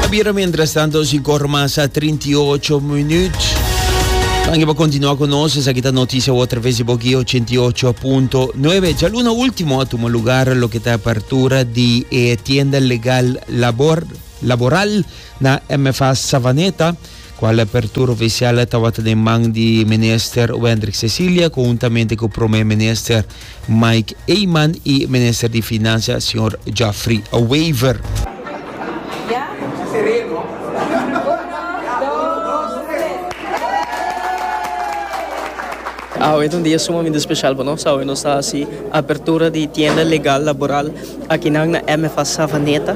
Ta bira mientras tanto si corre mas a 38 minuut. Dankie pa continua con nos. Esa kita noticia otra vez di Boki 88.9. Ja luna ultimo a tuma lugar lo kita apertura di e tienda legal labor laboral na MFA Savaneta. Kua e apertura ofisial tabata den man di Minister Wendrick Cecilia konhuntamente ku Prome Minister Mike Eman i Minister di Finansia señor Geoffrey Wever. Awe ta un dia sumamente speshal pa nos, awe nos ta hasi apertura di tienda legal laboral. Akinan na MFA Savaneta,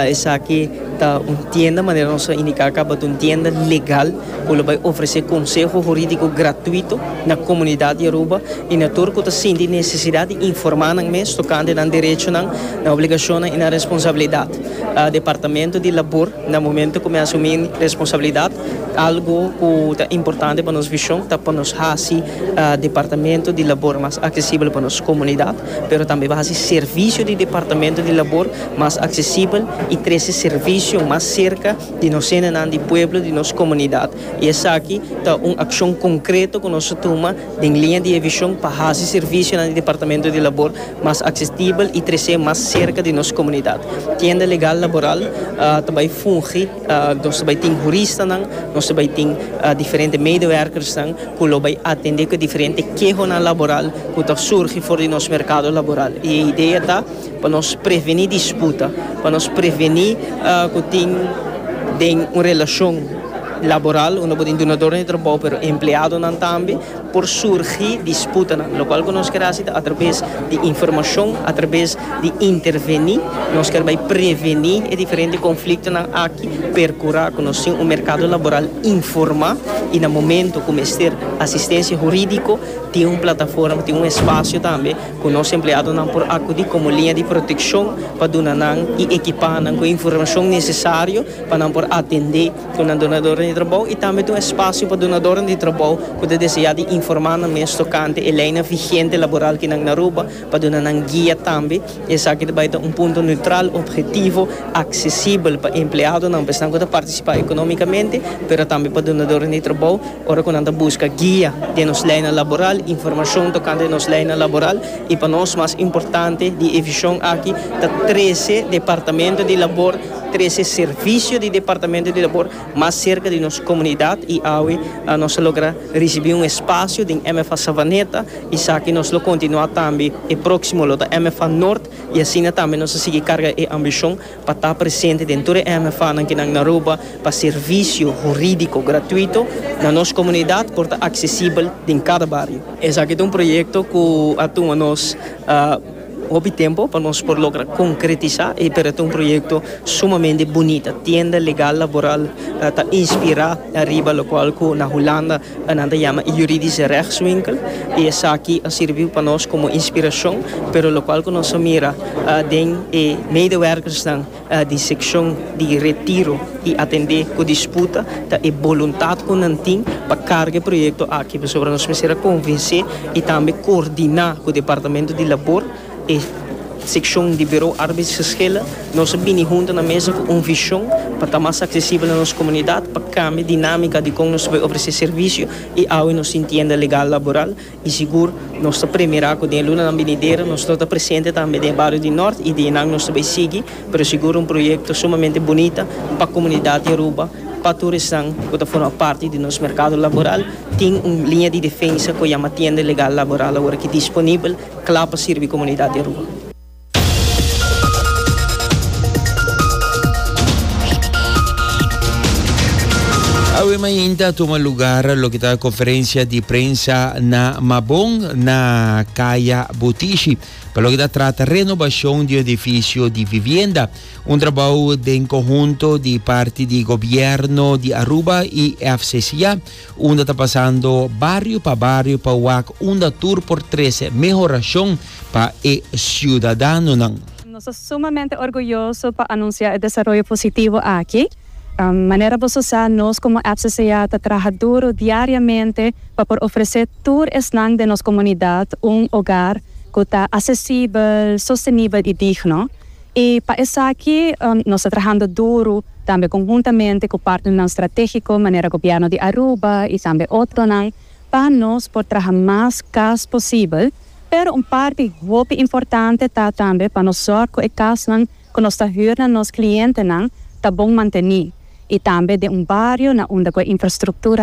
esaki ta un tienda, manera nos a indiká akaba, ta un tienda legal ku lo bai ofresé konseho hurídiko gratuito na komunidat di Aruba i na tur ku ta sinti nesesidat di informá nan mes tokante nan derechonan, nan obligashonnan i nan responsabilidat. Departamento di Labor na momentu ku mi asumí responsabilidat, algu ku ta importante pa nos vishon ta pa nos hasi Departamento di Labor mas aksesibel pa nos komunidat. pero tambe pa hasi servisio di Departamento di Labor mas aksesibel i trese servisio mas serka di nos hendenan di pueblo, di nos komunidat. I esaki ta un akshon konkreto ku nos a tuma den liña di e vishon pa hasi servisionan di Departamento di Labor mas aksesibel i trese mas serka di nos komunidat. Tienda Legal Laboral ta bai fungi. Nos ta bai tin huristanan, nos ta bai tin diferente medewerkersnan ku lo bai atendé ku e diferente kehonan laboral ku ta surgi for di nos merkado laboral. I e idea ta pa nos prevení disputa, pa nos prevení ku tin den un relashon laboral unda bo ta duna dor di trabou pero empleadonan tambe. por surgi disputanan, lokual ku nos keda hasi ta atrabes di informashon, atrabes di interveni, nos ker bai preveni e diferente konfliktonan aki, perkurá ku nos tin un merkado laboral informá i na momentu ku mester asistensia hurídiko tin un plataforma, tin un espasio tambe ku nos empleadonan por akudí komo liña di protekshon pa duna nan i ekipá nan ku e informashon nesesario pa nan por atendé. Ku nan donadoren di trabou i tambe ta un espasio pa donadoren di trabou ku ta deseá di informá nan mes tokante e leinan vigente laboral ki nan na Aruba pa duna nan guia tambe. Esaki ta bai ta un punto neutral, objetivo, aksesibel pa empleadonan, pa esnan ku ta partisipá ekonómikamente, pero tambe pa donadoren di trabou ora ku nan ta buska guia den nos leinan laboral, informashon tokante nos leinan laboral i pa nos mas importante di e vishon aki ta trese departamento di labor. Trese servisio di Departamento di Labor mas serka di nos komunidat i awe nos a logra risibí un espasio den MFA Savaneta. Esaki nos lo kontinuá tambe. E próksimo lo ta MFA Nort i asina tambe nos a sigui karga e ambishon pa ta presente den tur e MFAnan kinan na Aruba pa servisio hurídiko gratuito na nos komunidat por ta aksesibel den kada bario. Esaki ta un proyekto ku a tuma nos. Hopi tempo pa nos por logra konkretisá e pero ta un proyekto sumamente bunita. Tienda legal laboral ta inspirá riba lokual ku na Hulanda nan ta yama e Juridische Rechtswinkel i esaki a sirbi pa nos komo inspirashon, pero lokual ku nos a mira den e medewèrkersnan, di sekshon di Retiro i atendé ku disputa ta e boluntat ku nan tin pa karga e proyekto aki pasobra nos mester a konvensé i tambe koordiná ku Departamento di Labor e sekshon di Bureau Arbeidsgeschillen nos a bini huntu na mesa ku un vishon pa ta mas aksesibel na nos komunidat pa kambia dinámika di kon nos ta por ofresé servisio i awe nos tin tienda legal laboral I sigur nos ta premira ku den lunanan binidero nos lo ta presente tambe den e bario di Nort i di einan nos ta bai sigui, pero sigur un proyekto sumamente bunita pa komunidat di Aruba, pa tur esnan ku ta forma parti di nos merkado laboral. Tin un liña di defensa ku a yama Tienda Legal Laboral awor aki disponibel kla pa sirbi komunidat di Aruba. Awe mainta a tuma lugar loke ta conferencia di prensa na Mabon na Kaya Butishi pa loke ta trata renovacion di un edificio di vivienda. Un trabao den conhunto di parti di gobierno di Aruba y FCCA. Unda ta pasando bario pa bario pa wak unda tur por trece mehorashon pa e ciudadanonan. Nos ta sumamente orguyoso pa anuncia e desaroyo positivo aki. Manera bo so sa, nos como FCCA ta traha duro diariamente pa por ofrece tur esnan den nos comunidad un hogar cu ta accesibel, sostenibel y digno. I pa esaki nos ta trahando duru tambe konhuntamente ku partnernan stratégiko manera gobièrnu di Aruba i tambe otronan pa nos por traha mas kas posibel, pero un parti hopi importante ta tambe pa nos sòr ku e kasnan ku nos ta hür na nos klientenan ta bon mantení i tambe den un bario na unda ku e infrastruktura